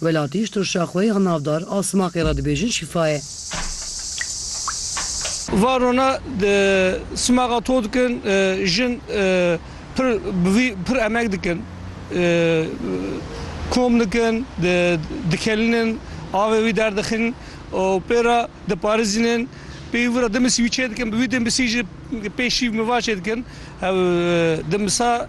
Welatî ji tirşa xwe ya navdar a simaqê re dibêjin şîfa ye. Varona di simaxa to dikin jin pir bi vî pir emek dikin. Kom dikin, dikelînin, avê wî derdixin û pê re diparêzînin. Pêyî wî re dimisî wî çêdikin, bi wî dimisî jî pê şîv miva çêdikin. Hev dimisa.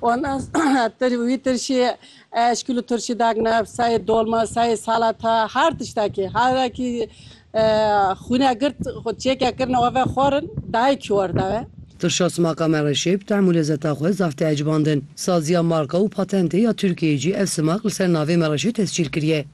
Wala wî tirşî eşkil û tirşî dakne sayê dolma, sayê salata her tiştekî. Herekî xwîne girt xwe çêkek kirine we ve xwarin dayê kî war daye. Tirşa simaka me re şêb, tehm û lezeta xwe zaf tê ecibandin. Saziya marka û patentê ya Tirkiyeyê jî ev simak li ser navê me re jî tescîl kiriye.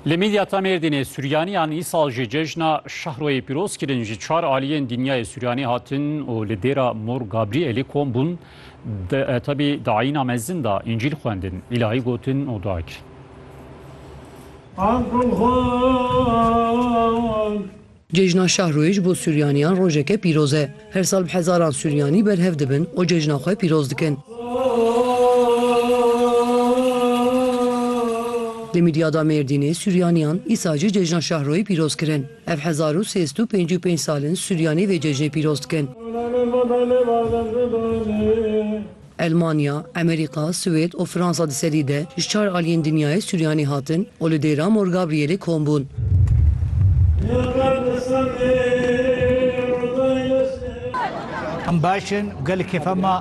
Li Midyata Mêrdînê Suriyaniyan îsal ji cejna şehroyê pîroz kirin ji çar aliyên dinyayê Suriyani hatin û li dêra Mor Gabrielê kom bûn tebî di ayîna mezin da încîl xwendin, îlahî gotin û dua kirin. Cejna Şahrûyê ji bo Sûryanîyan rojeke pîroz e. Her sal bi hezaran Sûryanî berhev dibin û cejna xwe pîroz dikin. Di Midyada Mêrdînê Sûryanîyan îsal jî Cejna Şahrûyê pîroz kirin. Ev hezar û sê sed û pêncî û pênc sal in Sûryanî vê cejnê pîroz dikin. Elmanya, Emerîka, Swêd û Fransa di serî de ji çar aliyên dinyayê Suryanê hatin û li Dêra Mor Gabrielê kom bûn. Em baş in, gelê kêfa me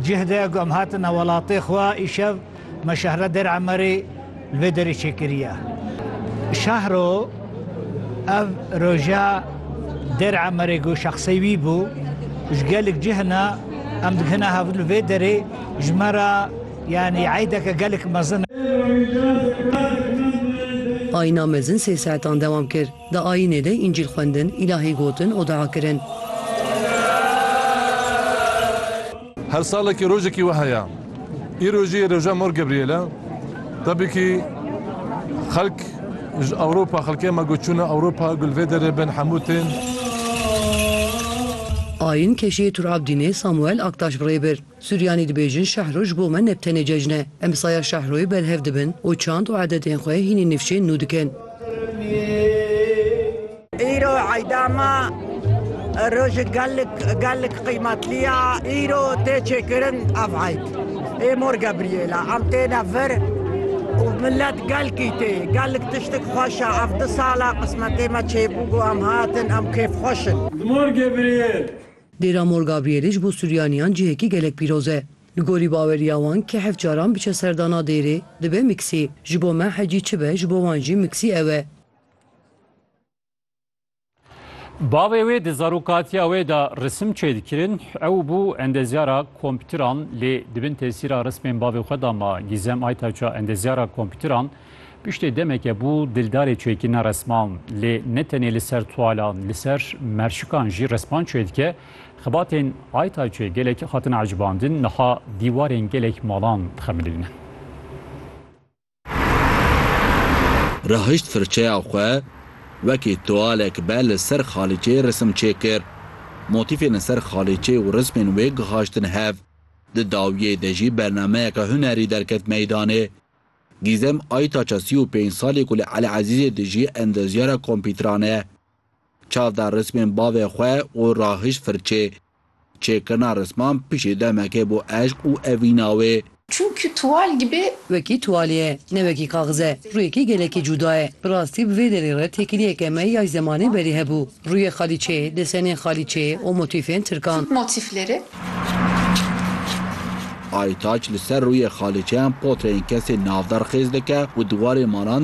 cih de ku em hatine welatê xwe îşev. Me şehra Dêr Emerê li vê derê çêkiriye. Şehro ev roja Dêr Emerê ku şexsê wî bû ji gelek cih hene em dikine hev li vê derê ji me re yanî eydeke gelek mezin e. Ayna mezin sê saetan dewam kir. Di ayînê de Încîl xwendin, îlahî gotin û dua kirin. Her salekî rojekî wiha ye. Îro jî roja Mor Gebrîyêl e. Tebîkî xelk ji Ewropa, xelkê me ku çûne Ewropa gul vê derê bên hemû tên. Ayîn keşiyê Tur Abdînê Samuel Aktaş bi rê bir. Suryanî dibêjin Şehro ji bo me ne bi tenê cejn e. Em saya Şehroyê berhev dibin û çand û edetên xwe hînî nifşên nû dikin. Îro eyda me rojek gelek gelek qîmetlî ya. Îro tê çêkirin ev eyd. Ê Mor Gebrîyêl e. Em têne vir û milet gelkî tê. Gelek tiştek xweş e. Ev du sal e qismetê me çêbû ku em hatin, em kêfxweş in. Mor Gebrîyêl Dêra Mor Gabrielê ji bo Suryaniyan cihekî gelek pîroz e. Li gorî baweriya wan kê heft caran biçe serdana dêrê, dibe miksî. Ji bo me hecî çi be, ji bo wan jî miksî ew e. Bavê wê di zarokatiya wê de risim çêdikirin, ew bû endezyara kompîtiran lê di bin tesîra rismên bavê xwe de ma. Gîzem Aytaça endezyara kompîtiran, Piştê demeke bû dildarê çêkirina resman lê ne tenê li ser tualan li ser merşikan jî resman çêdike. Xebatên Aytayçê gelek hatin ecibandin niha dîwarên gelek malan dixemilînin. Rahişt firçeya xwe wekî tualek be li ser xalîçeyê resim çêkir. Motîfên li ser xalîçeyê û rismên wê gihaştin hev. Di dawiyê de jî bernameyeke hunerî derket meydanê. Gîzem Aytaça sî û pênc salî ku li El Ezîzê dijî endezyara kompîtran e. Çav da rismên bavê xwe û rahişt firçê. Çêkirina risman piştî demekê bû eşq û evîna wê. Çünkü tuval gibi. Wekî tuwalê ye, ne wekî kaxize. Rûyekî gelekî cûda ye. Bi rastî bi vê derê re têkiliyeke me yay zemanê berî hebû. Rûyê xalîçê, desenên xalîçê û motîfên tirkan. Aytaç li ser rûyê xalîçeyan potreyên kesên navdar xêz dike û diwarê malan